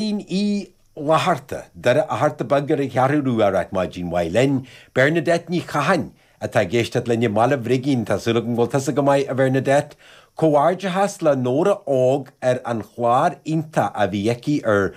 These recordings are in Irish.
Máirín Uí Fhlaithearta, Doire Fhatharta Beag ar an Cheathrú Rua, ag ráit maidin mhaith linn, Bernadette Ní Chatháin, atá ag éisteacht linn i mBaile Bhrigín, tá súil agam go bhfuil tusa go maith a Bhernadette. Comhghairdeachas le Nóra Óg ar an chlár iontach a bhí aici ar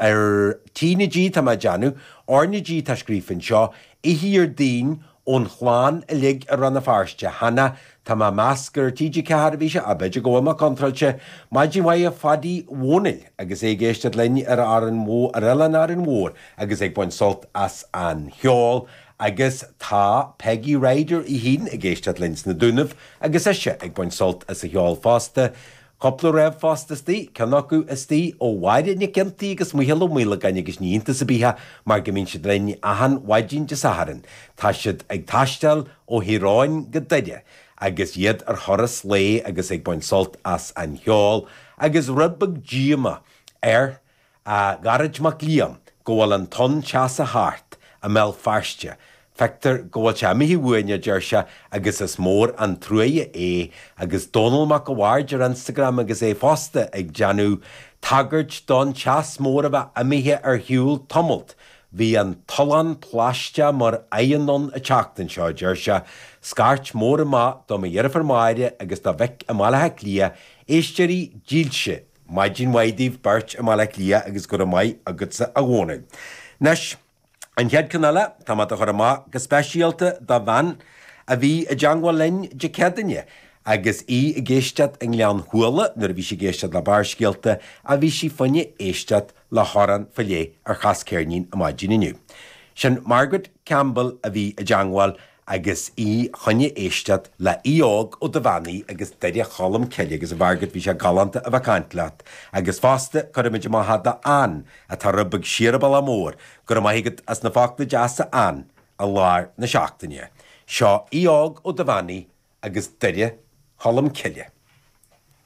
ar T na G tá mé ag déanamh, R na G atá scríofa anseo, oíche Déardaoin, Ón chlann uilig i Rann na Feirste cheana, tá mé ag meas gur ar TG4 a bhí sé, ach b'fhéidir go bhfuil mé contráilte, maidin mhaith do Phadaí Dhónaill agus é ag éisteacht linn ar Árainn Mhór, ar Oileán Árainn Mhór agus ag baint sult as an cheol. Agus tá Peigí Ryder Uí Shínn ag éisteacht linn sna Dúnaibh agus ise ag baint sult as an cheol fosta. Cupla ríomhphost istigh, ceann acu istigh ó Mháire Nic Fhionntaí agus Micheál Ó Maolagáin agus ní iontas ar bith é mar go mbíonn siad linn achan mhaidin Dé Sathairn, tá siad ag taisteáil ó Thír Eoghain go Doire agus iad ar thuras lae agus ag baint sult as an cheol agus rud beag díomá ar a Gearóid Mac Liam go bhfuil an tonn teasa thart i mBéal Feirste, feictear go bhfuil sé imithe uainn, a deir sé, agus is mór an truaighe é, agus Dónall Mac a' Bhaird ar Instagram agus é fosta ag déanamh tagairt don teas mór a bheith imithe ar shiúl tamallt, bhí an tollán plaisteach mar oigheann ann an tseachtain seo, a deir sé, scairt mór amach do mo dheirfiúr Máire agus do Mhick i mBaile Átha Cliath, éisteoirí dílse Maidin mhaith daoibh beirt i mBaile Átha Cliath agus go raibh maith agatsa a Dhónaill. Anois, an chéad ceann eile, tá mé dá chur amach go speisialta do bhean a bhí i dteangmháil linn Dé Céadaoine agus í ag éisteacht i nGleann Thualla nuair a bhí sí ag éisteacht le Barrscéalta ach bhí sí fá choinne éisteacht le hamhrán faoi leith ar Chas Ceirnín ar maidin inniu. Sin Margaret Campbell a bhí i dteangmháil agus í choinne éisteacht le hAodh Óg Ó Duibheannaigh agus Doire Cholm Cille agus a Mhargaret bhí sé galánta a bheith ag caint leat agus fosta cuirfimid amach é do Ann atá rud beag siar an bealach mór go raibh maith agat as na focla deasa Ann i lár na seachtaine seo Aodh Óg Ó Duibheannaigh agus Doire Cholm Cille.